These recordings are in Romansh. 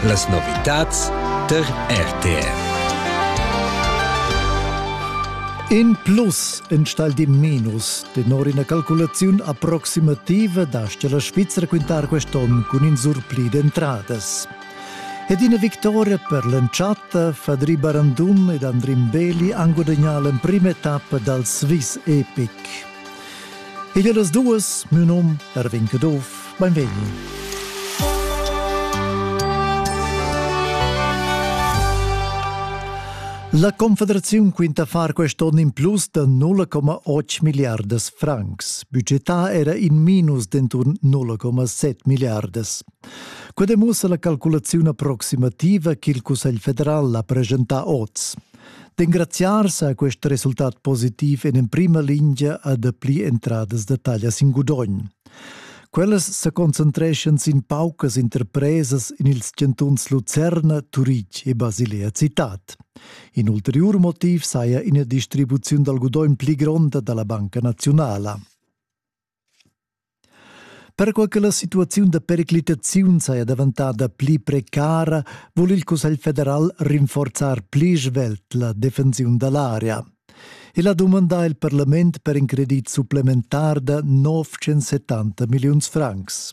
Las novitads der RTR. In plus enstagl di minus tenor ina calculaziun approximativa dastia la Svizra quintar quest'onn cun in surpli d'entradas. Ed ina victoria per l'entschatta Fadri Barandum ed Andrin Beli han gudagnà l'emprima etappa dal Swiss Epic. E ja das duas, meu nom Erwin Kadoff, beim Veni. La Confederaziun quinta far quest onn in plus da 0,8 milliardas francs. Budgetà era in minus d'enturn 0,7 milliardas. Quai demussa la calculaziun approximativa ch'il Cussegl federal ha presentà oz. D'engraziars ha quest resultat positiv en emprima lingia a dapli entradas da taglia sin gudogn. Quellas sa concentreschan sin paucas interpresas en ils chantuns Lucerna, Turitg e Basilea Citat. In ulteriur motiv saja ina distribuziun dal gudogn pli gronda da la Banca Naziunala. Perquai che la situaziun da periclitaziun saja daventada pli precara, vul il Cussegl federal rinforzar pli svelt la defensiun da l'aria. El ha dumandà il parlament per in credit supplementar da 970 milliuns francs.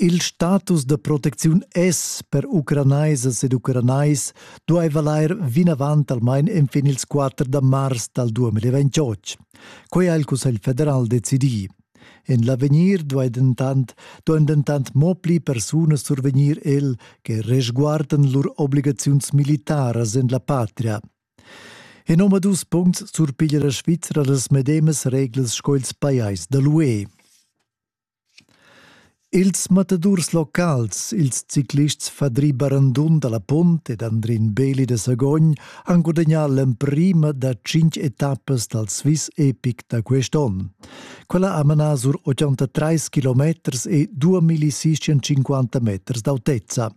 Il status da protecziun es per ucranaisas ed ucranais duai valair vinavant almain enfin ils 4 da mars dal 2028. Quai ha il Cussegl federal decidì. En l'avegnir duai dentant, duain dentant mo pli persunas survegnir el che resguardan lur obligaziuns militaras en la patria. En omadus puncts surpiglia la Svizra las medemas reglas sco ils pajais da l'UE. Ils matadurs locals, ils ciclists Fadri Barandun dalla Punt ed Andrin Beli da Sagogn han gudagnà l'emprima da tschintg etappas dal Swiss Epic da quest'onn. Quella ha manà sur 83 kilometers e 2650 meters d'autezza.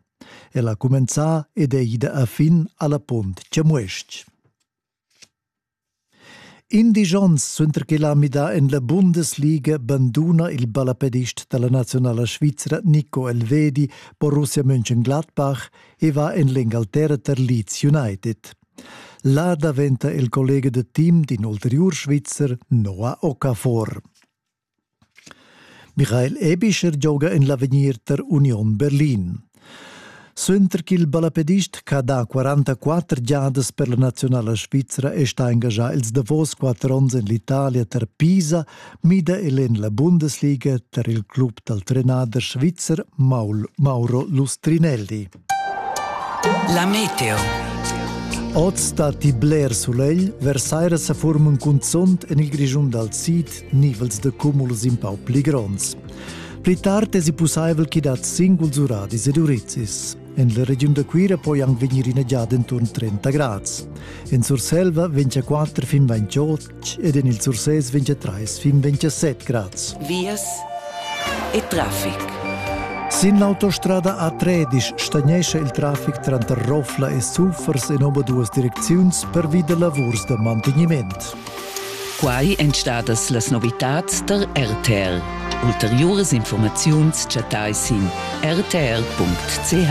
Ella ha cumenzà ed è ida a fin alla Punt Chamues-ch. Indisch ons suenter ch'el ha midà en la Bundesliga banduna il ballapedist da la naziunala svizra Nico Elvedi Borussia Mönchengladbach e va en l'Engalterra tar Leeds United. Là daventa il collega da team d'in ulteriur Svizzer, Noah Okafor. Michael Ebischer gioga en l'avegnir tar Union Berlin. Suenter ch'il ballapedist ch'ha dà 44 giadas per la naziunala svizra è stà engaschà ils davos quatter onns en l'Italia tar Pisa, mida el en la Bundesliga tar il club dal trenader svizzer Mauro Lustrinelli. La meteo. Oz datti bler sulegl, versaira sa forman cunzont en il Grischun dal sid nivels da cumuls in pau pli gronds. Pli tard è pussaivel ch'i dat singuls uradis ed urizis. En la regiun da Cuira poi anc vegnir ina giada enturn 30 grads. En Surselva vegn 4 fin 28 ed en il Sursés 23 fin 27 grads. Vias e traffic. Sin l'autostrada A13 stagnescha il traffic tranter Rofla e Sulfers in obaduas direcziuns pervi da lavurs da mantegniment. Quai èn stadas las novitads tar RTL. Ulteriuras informaziuns chattai sin rtl.ch.